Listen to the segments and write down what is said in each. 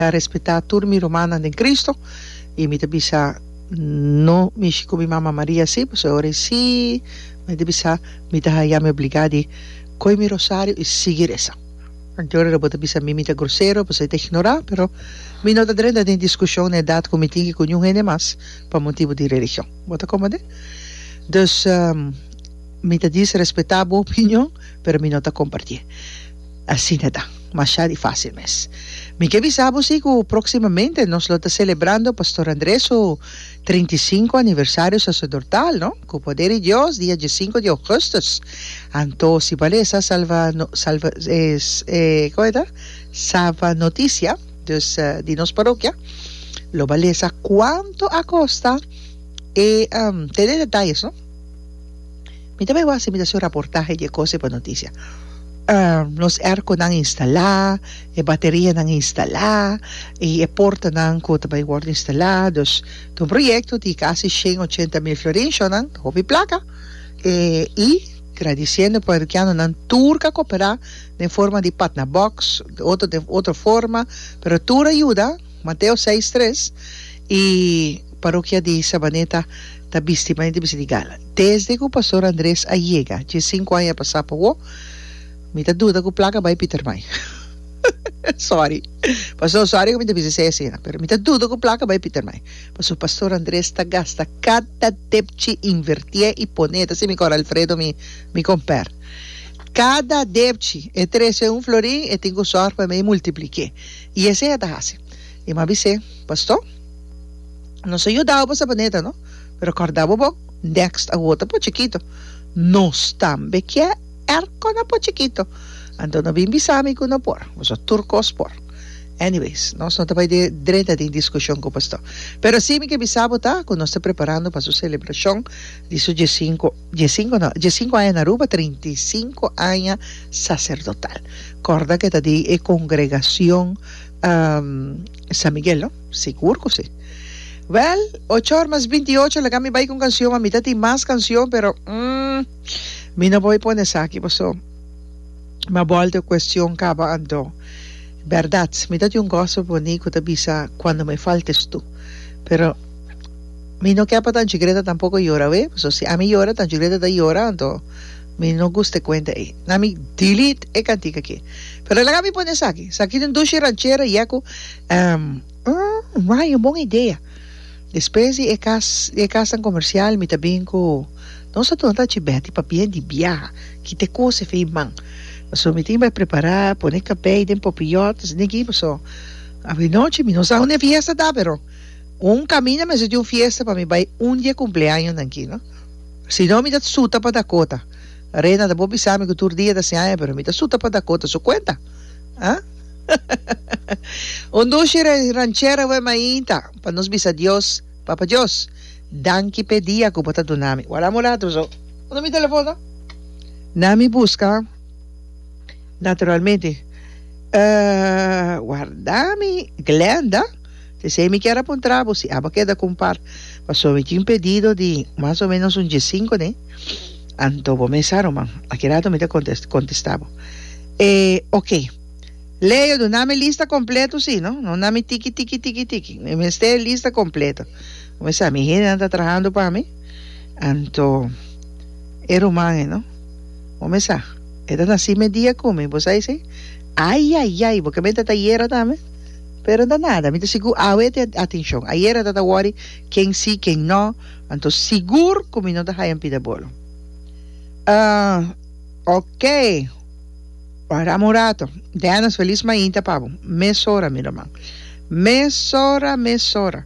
Ta respetá tur mi rumannan den Kristu, i mi ta bisa no mishi ku mi mama Maria si, pasobra ora e si, mi ta bisa mi ta haya mi obligá di kohe mi rosario i sigui resa. Anto ora bo ta bisa mi mi ta grosero pasobra i ta ignorá, pero mi no ta drenta den diskushon na edat ku mi tin ke kuniun hende mas pa motibu di religion. Bo ta komprendé? Dus mi ta disrespetá bo opinion, pero mi no ta kompartié. Asina ta. Masha di fásil mes. Mi ke bisa bo si ku próksimamente nos lo ta selebrando Pastor André su trinta i sinku aniversario saserdortal, no? Ku poder di Dios dia diesinku di ougùstus, anto si balesa salva no, salva kòmku ta? Sava Notisia, dus di nos parokia, lo balesa kuantu a kosta e tene detayes, no? Mi ta bai wak-si, mi ta haci raportahe di e cosnan pa noticia. Nos airconan instala, e baterianan instala, y e portanan cu ta bai wordo instala. Dus ta un proyecto di casi shen ochenta mil florin, shornan ta hopi placa. Y gradiciendo parrokianonan tur cu a coopera den forma di patna box, otro den otro forma, pero tur a yuda. Mateo seis tres, E parokia di Sabaneta ta bisti manera di bisti di gala. Desde ku Pastor Andres a yega, dje sinku aña a pasá pa wou, mi ta duda ku plaka bai Pietermaai. Sòri, Pastor, sòri ku mi ta bisa esei asina, pero mi ta duda ku plaka bai Pietermaai, pasobra Pastor Andres ta gasta kada depchi, invertié i pon'é, e ta sin mi kòrda Alfredo mi mi kompèr. Kada depchi, e trese un florin, e tin ku sòrg pa mi multipliké. I esei a ta hasi. I mi a bis'é, Pastó, nos a yuda bo pa sa planeta, no? Pero kòrda bo bo, next a wota por chikito. Nos tambe kier er kona por chikito. Anto no bin bisa mi ku no por. Boso tur kos por. Anyways, nos no ta bai drenta den diskushon ku Pastó. Pero si mi ke bisa bo ta ku nos ta preparando pa su selebrashon di su diesinku. Dje sinku no, dje sinku aña na Aruba, trinta i sinku aña saserdotal. Kòrda ku e ta di e kongregashon San Miguel no? Sigur ku si. Wèl, ocho or mas binti i ocho laga mi bai ku un kanshon mas, mi ta tin mas kanshon pero mm mi no por pone esaki paso mi a bòlta e kuestion kaba anto bèrdat mi ta tin un gospel boní ku ta bisa kuando me faltes tu pero Mi no ke pa Tanchi Greta tampoco yora awé, pasobra si ami yora Tanchi Greta ta yora anto mi no gusta e kuenta ei. Na mi delete e kantika aki. Pero laga mi pone esaki. Esaki ta un dushi ranchera ya ku ehm ehm Ryan un bon idea. Despues di e kas di e kasnan komersial mi ta bin ku nos a duna Tanchi Betty pa bien di biaha kita e kos efei i man. Pasobra mi tin bai prepará pone kabei den popiyot esei tin aki pasobra awe nochi mi no sa unda e fiesta ta pero. Un caminda mester tin un fiesta pa mi bay un di e cumpleañonan ki no. Si no mi ta suta pa Dakota. Rena ta por bisa mi cu tur dia ta hasi aña pero mi ta suta pa Dakota su cuenta. Ahh. Un dushi ranchera web mainta pa nos bisa Dios, Papa Dios, danki p'e dia cu bo ta duna mi. Wala mulato so. Unda mi telefon ta? Na mi busca naturalmente. Ahh, warda mi Glenda. P'esei mi kier a puntra bo si aba keda ku un par, paso mi tin pedido di mas o menos un diesinko n'e, anto bo mester sa ruman. A ki rato mi ta kontes kontesta bo. E, ok. Leo, duna mi lista kompleto si no, no na mi tiki tiki tiki tiki. Mi mester e lista kompleto. Bo mester sa mi hendenan ta trahando pa mi, anto e ruman e no, bo mester sa e ta nasi media ku mi, bo sa esei? Ayayay, bo kier mester ta yera tambe? Pero ta nada, mi ta sigur awe te atencion. Ayera ta ta worry ken si, ken no, anto sigur cu mi no ta haya pida bolo. Ah, ok, wahramo un rato. Dennis, feliz mainta pa bo. Mesora, mi ruman. Mesora, mesora.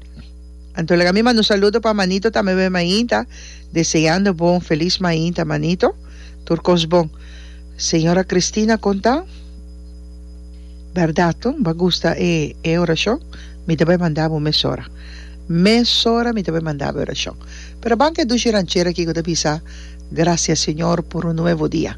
Anto lega mi manda un saludo pa Manito tambe pa e mainta, deseando bo un feliz mainta, Manito. Tur cos bon. Señora Cristina, con ta? Berdad to? Bo a gusta e e oracion? Mi ta bai manda bo mesora. Mesora mi ta bai manda bo e oracion. Pero a ban cu e dushi ranchera aki cu ta bisa, Gracias Señor por un nuevo dia.